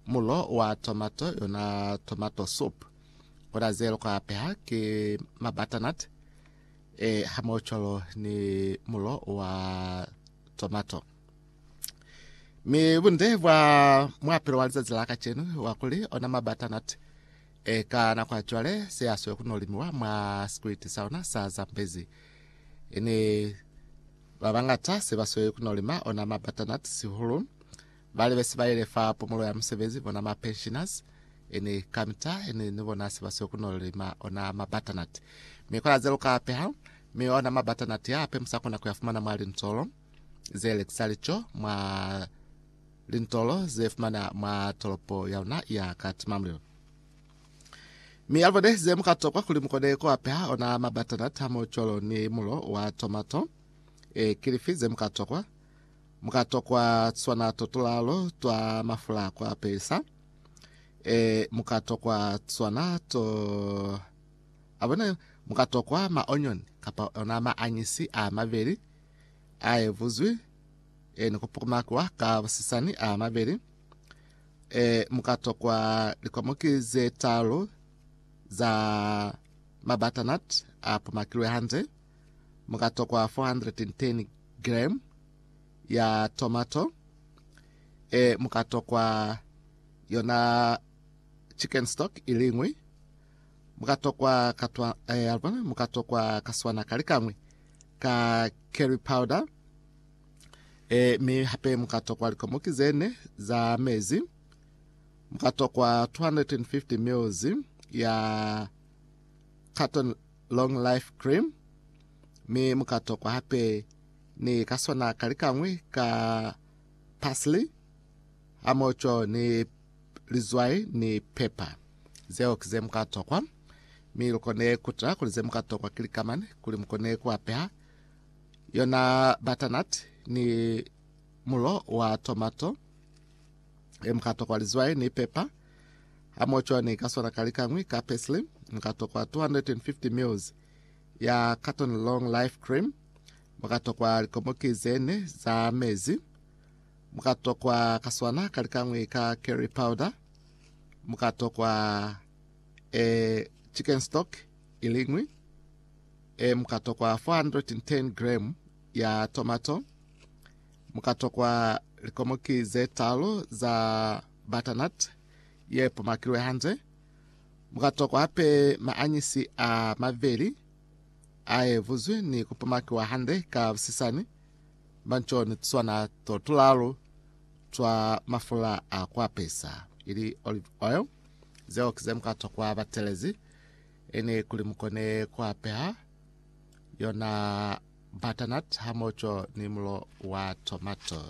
Mulo wa tomato, yona tomato soup, ona ze loko apeha ki ma butternut e hamohocwalo ni mulo wa tomato. Mi bunde bwa muapelo wa lizazi la kacenu wa kuli ona ma butternut e ka nako ya cwale se asweli ku no limiwa mwa sikwiti sa ona sa Zambezi. Ini ba bangata se ba sweli ku no lima ona ma butternut sihulu Bali besi bayile fa pumulo ya musebezi bona ma pensioners ini kamita ini ni bona se basiwe kuno lima ona ma butternut mi kona ze luka peha mi ona ma butternut ya ape musa kona kuya fumana mwa lintolo ze luxury co mwa lintolo ze fumana mwa tolopo ya luna ya Kathmandu mi alibone ze muka tokwa kuli mukone ku apeha ona ma butternut hamo cwalo ni mulo wa tomato e kilifi ze muka tokwa Mu ka tokwa tswana to tulalo twa mafula ku apesa. E, mu ka tokwa tswana to. A bona yo? Mu ka tokwa maonyoni, kapa ona maañisi a mabeli, a evuzwi, e, ni ku pukumakwa ka busisani a mabeli. E, mu ka tokwa likomoki ze talu za mabutternut a pumakilwe hande. Mu ka tokwa 410 gram ya tomato, e mu ka tokwa yona chicken stock iliñwi, mu ka tokwa katwa, e, alibona, mu ka tokwa kaswana kalikañwi ka curry powder, e, mi hape mu ka tokwa likomoki zene za mezi, mu ka tokwa 250 mils ya carton Long Life Cream, mi mu ka tokwa hape ni ka sona ka likañwi ka parsley hamoco ni lizwai ni pepper. Zeo ki ze mu ka tokwa, mi lu kone ku tala kuli ze mu ka tokwa ki lika mane kuli mu kone ku apeha yona butternut ni mulo wa tomato. e mukatokwa lizwai ni pepa hamoho cwani ka sona kalikangwi ka parsley mukatokwa 250 mils ya carton long life cream mukatokwa likomoki zene za mezi mukatokwa ka sona kalikangwi ka curry powder mukatokwa e chicken stock ilingwi e mukatokwa 410 gram ya tomato Mu ka tokwa likomoki ze talu za butternut ye pumakilwe hande. Mu ka tokwa hape maanyisi a maveli a evuzwi ni ku pumakiwa hande ka busisani ba nco ni tuswana to tulalu twa mafula a ku apesa, ili olive oil. Zeo ki ze mu ka tokwa batelezi ini kuli mu kone ku apeha yona. butternut hamoco ni mulo wa tomato.